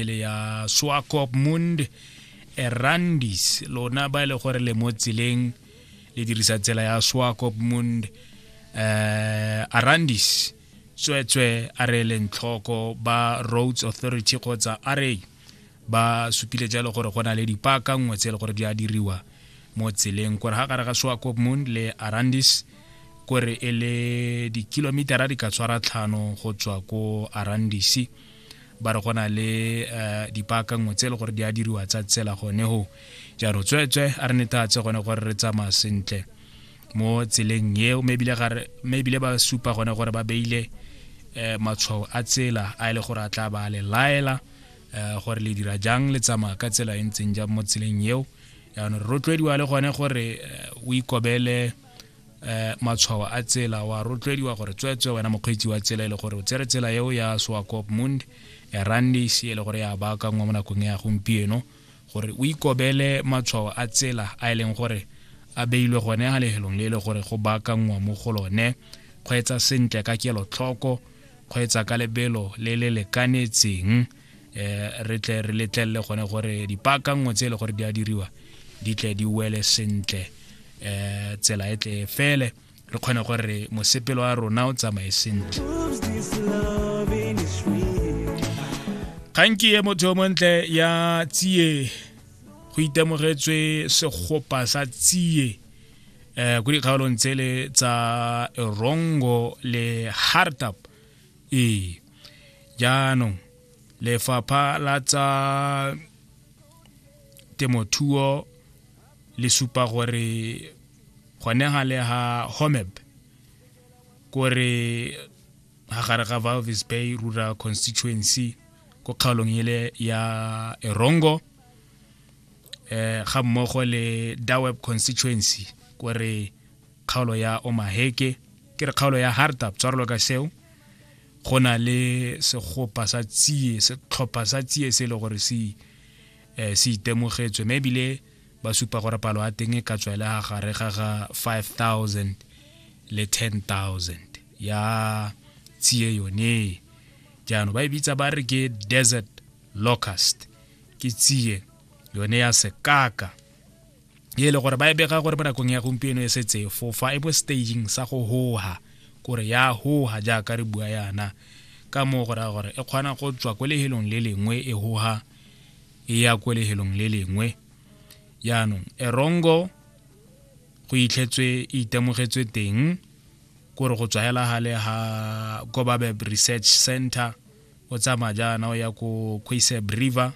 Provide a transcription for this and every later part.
le ya swakopmund erandis lona ba e le gore le mo tseleng le dirisa tsela ya swakopmund um eh, arandis tsweetswe a re leng tlhoko ba roads authority kgotsa ra ba supile jalo gore go na le dipaka nngwe tse e le gore di a diriwa mo tseleng kore ga gare ga swakopmund le arandis kore e le dikilomitara di ka tshwara tlhano go tswa ko arandisi ba re go na le um dipaakangwe tse e le gore di a diriwa tsa tsela gone go jaanong tsweetswe a re netatse gone gore re tsamaya sentle mo tseleng eo mme ebile ba supa gone gore ba beile um matshwao a tsela a e le gore a tla ba a le laela um gore le dira jang le tsamaya ka tsela e ntseng jang mo tseleng eo jaanong re rotloediwa le gone gore o ikobele eh matshwao a tsela wa rotloediwa gore tsweetswe wena mokgweetsi wa tsela e le gore o tsere tsela eo ya soakopmund erandis e le gore ya baakangwa mo nakong ya gompieno gore o ikobele matshwao a tsela a e leng gore a beilwe gone ga lehelong le e le gore go baakangwa mo go lone kgweetsa sentle ka kelotlhoko kgweetsa ka lebelo le le lekanetseng eh re tle re letlelele gone gore dipaakanngwe tse e le gore di a diriwa di tle di wele sentle eh tsela e tle fele re kgone gore mosepelo wa rona o tsamaye sentle kganki e motho yo montle ya tsie go itemogetswe segopa sa tsie eh go dikgaolong tsele tsa rongo le hartap ee jaanong lefapha la tsa temothuo le supa gore gone ga le ga homeb kore ga gare ga valvis bay rural constituency ko kgaolong ele ya erongo eh ga mmogo le daweb constituency kore kgaolo ya omaheke ke re kgaolo ya hartap tshwarelo ka seo go na le segopa sa tsie setlhopha sa tsie se e le gore se eh, se itemogetswe mme ebile ba supa gore palo ya teng e ka tswa e le ga gare ga ga 5000 le 10000 ya tsie yone jaanong ba e bitsa ba re ke desert locust ke tsie yone ya sekaka e le gore ba e bega gore mo nakong ya gompieno e setse fofa e bo staging sa go hoha kore ya hoha jaaka re bua yana ka moo go raya gore e kgona go tswa ko lehelong le lengwe e hoha e ya ko lehelong le lengwe jaanong erongo go itlhetswe e itemogetswe teng kore go tswa hela gale ga kobabeb research center o tsamaya jaana o ya ko quaseb river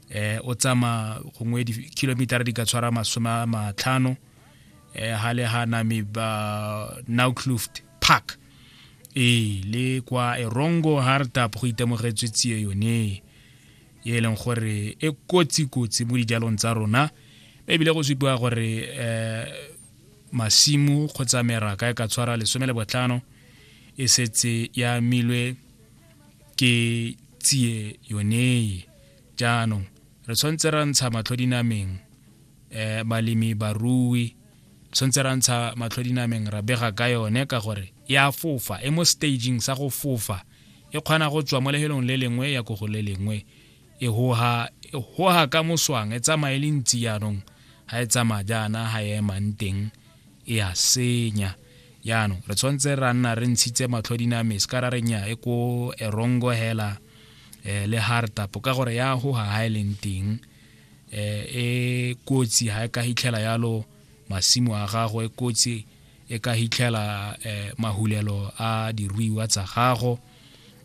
eh o tsama gongwe di-kilometera di ka tshwara masome a matlhano eh ha le ha name ba nowcluft park ee le kwa erongo hardtap go itemogetswe tsie yone e leng gore e kotsi-kotsi mo dijalong tsa rona ebile go supiwa gore um masimu kgotsa meraka e ka tshwara lesome le botlhano e setse ya amilwe ke tsie yoneye jaanong re tshwanetse ra ntsha matlho dinameng um balemi barui tshwanetse ra ntsha matlho dinameng ra bega ka yone ka gore e a fofa e mo staging sa go fofa e kgona go tswa mo lehelong le lengwe ya ko go le lengwe e hoha e hoha ka moswang e tsamaye le ntsi jaanong ga e tsamaya jaana ga e emang teng e a senya jaanong re tshwanetse ra nna re ntshitse matlho diname se ka ra re nya e ko erongo hela um le hartapo ka gore ya goga ga e leng teng um e kotsi ga e ka hitlhela yalo masimo a gago e kotsi e ka hitlhela um mahulelo a diruiwa tsa gago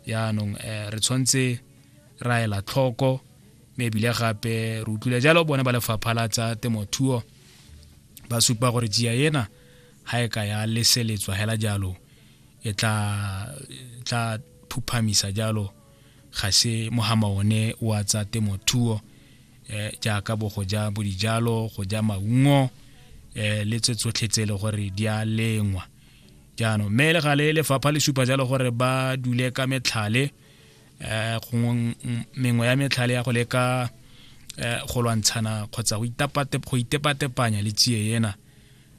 jaanong um re tshwanetse ra ela tlhoko mme ebile gape re utlwile jalo bone ba lefapha la tsa temothuo ba supa gore jia ena ga e ka ya leseletswa hela jalo e tla tla phuphamisa jalo ga se mogama one wa tsa temothuo eh jaaka bo go ja bo dijalo go ja maungo eh le tse tsotlhe tse e le gore di a lengwa jaanong mme le gale lefapha le supa jalo gore ba dule ka metlhale eh gongwe mengwe ya metlhale ya go leka eh, go lwantshana kgotsa go itepatepanya le tsie ena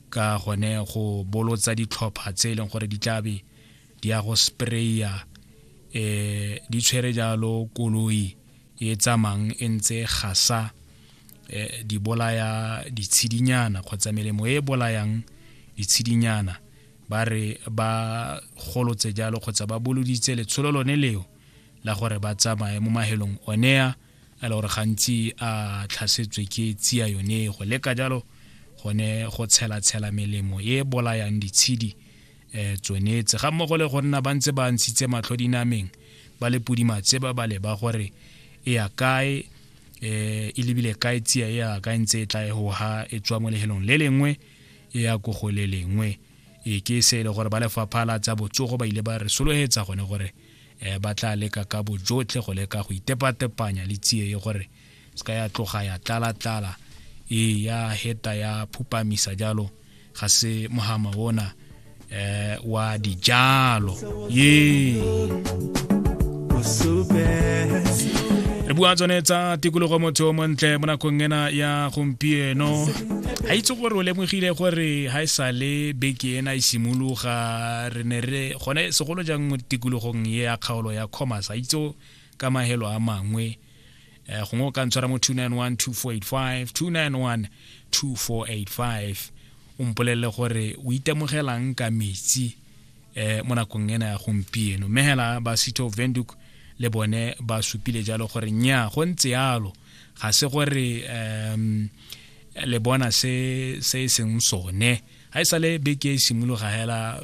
ka gone go bolotsa ditlhopha tse e leng gore di tlabe di ya go spraya eh di tshwere jalo koloi e tsamang e ntse gasa eh, di bolaya ditshidinyana kgotsa melemo e bolayang ditshidinyana ba re ba golotse jalo kgotsa ba boloditse letsholo lone leo la gore ba tsamaye mo mahelong onea a le gore gantsi a tlhasetswe ke tsia yone go leka jalo gone go tshelatshela melemo e bolayang ditshedi um tsone tse ga mmogo le go nna ba ntse ba ntshitse matlho dinameng ba le pudimatse ba ba leba gore e ya kae um e lebile kae tsia e ya kae ntse e tla e goga e tswa mo lehelong le lengwe e ya ko go le lengwe e ke se e le gore ba lefapha la tsa botsogo ba ile ba re sologetsa gone gore um ba tla leka ka bojotlhe go leka go itepatepanya le tsie e gore se ka ya tloga ya tlala-tlala e ya heta ya phupamisa jalo ga se mohama ona eh, wa dijalo ye re bua tsone tsa tikologo motho o montle mo nakong ena ya gompieno a itse gore o lemogile gore ga e sa le beke ena e simologa re ne re gone segolo jang mo tikologong ye ya kgaolo ya commerce a itse ka mahelo a mangwe eh, gongwe o ka ntshwara mo 291 2485 291 2485 o mpolelele gore o itemogelang ka metsi eh, mo nakong ena ya gompieno mme hela ba city of venduk le bone ba supile jalo gore nya go ntse yalo ga se gore um le bona se se e seng sone ga e sa le beke e simologa hela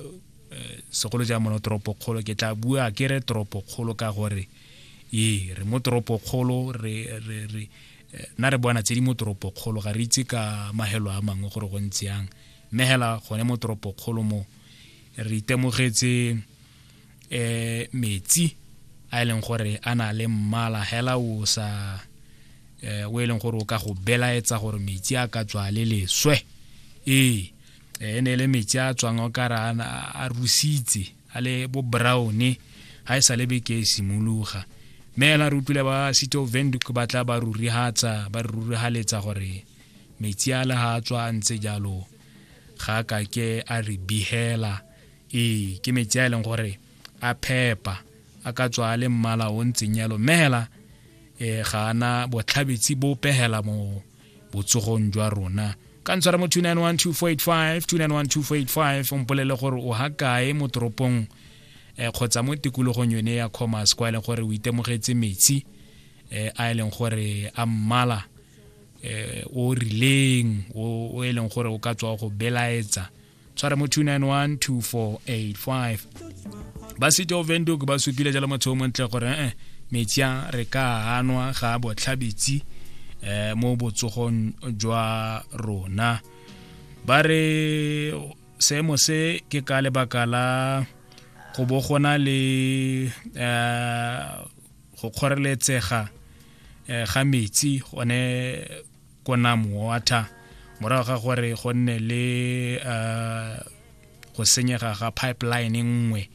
eh, segolo ja mono toropokgolo ke tla bua ke re toropokgolo ka gore ee re mo toropokgolo re re re eh, na re bona tse di mo toropokgolo ga re itse ka mahelo a mangwe gore go ntse yang mme hela gone mo toropokgolo mo re itemogetse eh metsi a e leng gore a na le mmala hela o sa eh o e leng gore o ka go belaetsa gore metsi a ka tswa le leswe ee eh, e ne e le metsi a tswang o ka ra a rusitse a le bo brown ha e sa le beke e simologa mme ela re utlwile ba city of venduc ba tla ba rurihatsa ba re rurihaletsa gore metsi a le ha a tswa a ntse jalo ga a kake a re bihela ee ke metsi a e leng gore a phepa a ka tswa a le mmala o ntseng yalo mme hela um ga ana botlhabetsi bo pegela mo botsogong jwa rona ka ntshwara mo 2912485 2912485 o mpolele gore o ha kae mo toropong eh, kgotsa mo tikologong yone ya commerce kwa e leng gore o itemogetse metsi eh, a e leng gore a mmala eh, o rileng o e leng gore o ka tswa go belaetsa tshwara mo 2912485 ba city of venduk ba supile jalo motho o montle gore eh metsi a re ka hanwa ga botlhabetsi eh mo botsogong jwa rona ba re seemo se ke ka lebaka la go bo gona le eh go kgoreletsega eh, ga metsi gone ko nam water morago ga gore go nne le uh, go senyega ga pipeline nngwe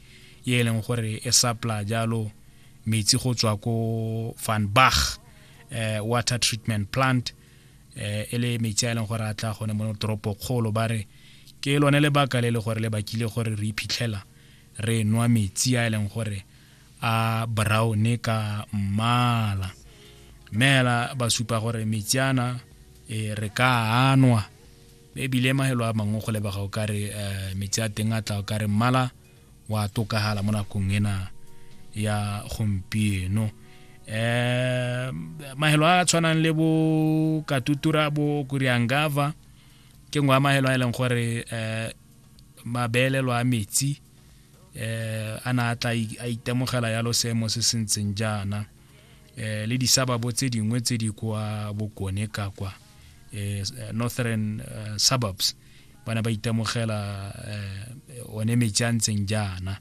ye e leng gore e supply jalo metsi go tswa ko van bach uh, eh, water treatment plant uh, e le metsi a e leng gore a tla gone mo toropo kgolo ba re ke lone lebaka le le gore le bakile gore re iphitlhela re nwa metsi a e leng gore a brown ka mmala mme hela ba supa gore metsi ana e re ka anwa ebile mahelo a mangwe go lebega o ka re eh, metsi a teng a tla o ka re mmala wa tokagala mo nakong ena ya gompieno eh mahelo a a tshwanang le bo katutura bo kuriangava ke ngwe ya mahelo a e leng gore eh mabelelo a metsi eh a na tla a itemogela ya losemo se se ntseng jaana eh le disababo tse dingwe tse di kwa bokone ka kwa eh northern eh, suburbs bana ba itemogela eh one metsi a ntseng jaana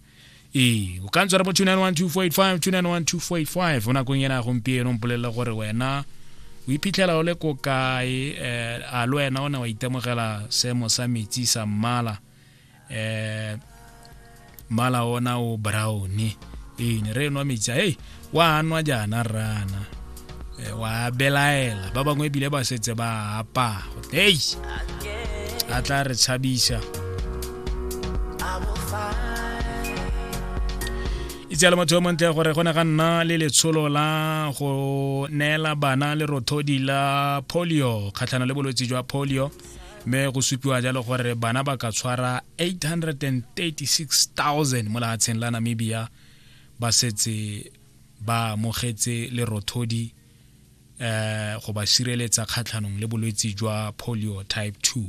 ee o ka ntswa re bo 2912485 2912485 o nakong ena gompieno mpolelele gore wena o iphitlhela o le ko kae eh, a le wena o ne wa itemogela seemo sa metsi sa mmala eh mmala ona o brown ee ne re nwa metsi a ei wa nwa jaana rrana Eh, wa belaela ba bangwe ebile ba setse ba apa ei a tla re tshabisa itse le motho yo montle gore go ne ga nna le letsholo la go neela bana lerothodi la polio kgatlhana le bolwetse jwa polio mme go supiwa jalo gore bana ba ka tshwara 836000 mo lefatsheng la namibia ba setse ba amogetse lerothodi eh go ba sireletsa kgatlhanong le bolwetsi jwa polio type 2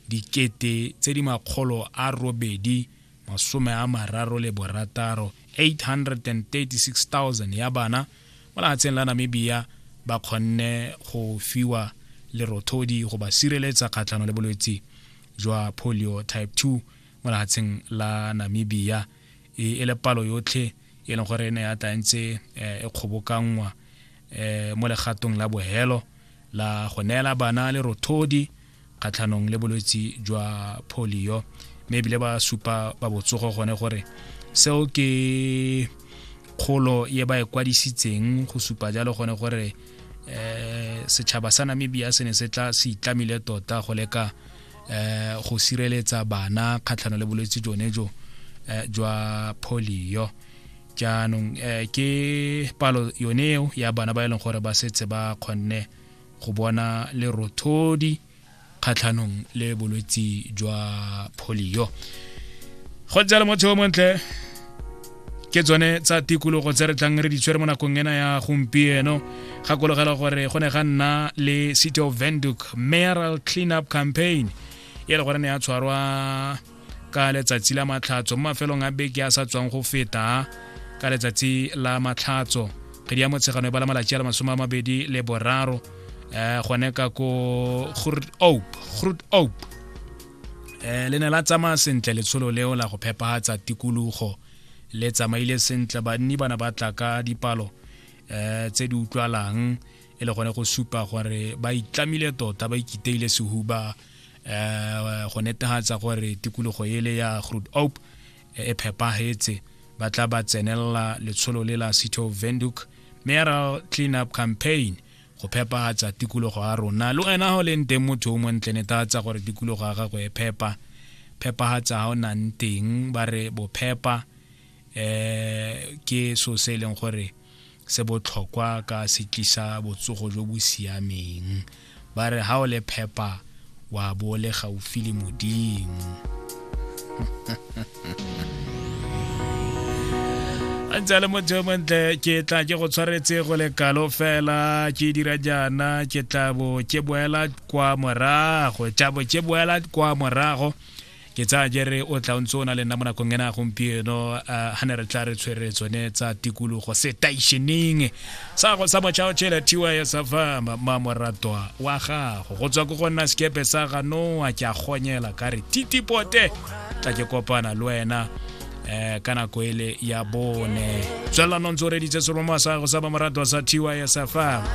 dikete tse di makgolo a robedi masome a mararo le borataro 836,000 ya bana mo lehatsheng la Namibia ba kgonne go fiwa lerothodi go ba sireletsa kgatlhano le bolwetse jwa polio type 2 mo lehatsheng la Namibia e, e le palo yotlhe e leng gore e ne ya tla ntse eh, e kgobokanngwa eh, mo legatong la bohelo la go neela bana lerothodi kgatlhanong le bolwetsi jwa polio mme ebile ba supa ba botsogo gone gore seo ke kgolo ye ba e kwadisitseng go supa jalo gone gore um setšhaba sa namibia se ne se tla se itlamile tota go leka um go sireletsa bana kgatlhano le bolwetse jone jo eh, jwa polio jaanong um ke palo yone eo ya bana ba e leng gore ba setse ba kgonne go bona lerothodi kgatlhanong le bolwetsi jwa polio go ntse le motho o montle ke tsone tsa tikologo tse re tlang re di tshwere mo nakong ena ya gompieno gakologela gore go ne ga nna le city of venduk mayoral clean up campaign e le gore ne ya tshwarwa ka letsatsi la matlhatso mo mafelong a beke a sa tswang go feta ka letsatsi la matlhatso kgedi ya motshegano e bala malatsi a le masome a mabedi le boraro um gone ka ko grut op grut op um eh, le ne la tsamaya sentle letsholo leo la go phepagatsa tikologo le tsamaile sentle banni bana ba tla ka dipalo um tse di utlwalang e le gone go supa gore ba itlamile tota ba ikiteile sehuba eh go netehatsa gore tikologo ele ya Groot Oak e phepahetse ba tla ba tsenelela letsholo le la City of Windhoek Mayoral Cleanup Campaign go phepahatsa tikologo ya rona le wena go leng teng motho o montle netehatsa gore tikologo ya gago e phepa phepahatsa ga o nang teng ba re bophepa eh ke so se e leng gore se botlhokwa ka se tlisa botsogo jo bo siameng ba re ga o le phepa wa bo le gaufi le modimo a ntse a le motho yo montle ke tla ke go tshwaretse go le kalo fela ke dira jaana ke tla bo ke boela kwa morago tla bo ke boela kwa morago ke tsaya jere o tla o ntse o na le nna mo nakong ena gompieno ga ne re tla re tshwere tsone tsa tikologo setaisheneng sa go sa mochao chela tiwa ya sa fa mamoratwa wa gago go tswa ko go nna sekepe sa ganoa ke a gonyela ka re titipote tla ke kopana le wena eh ka nako ele ya bone tswelelano ntse o reditse seromo sa go sa mamoratwa sa tiwa ya sa fa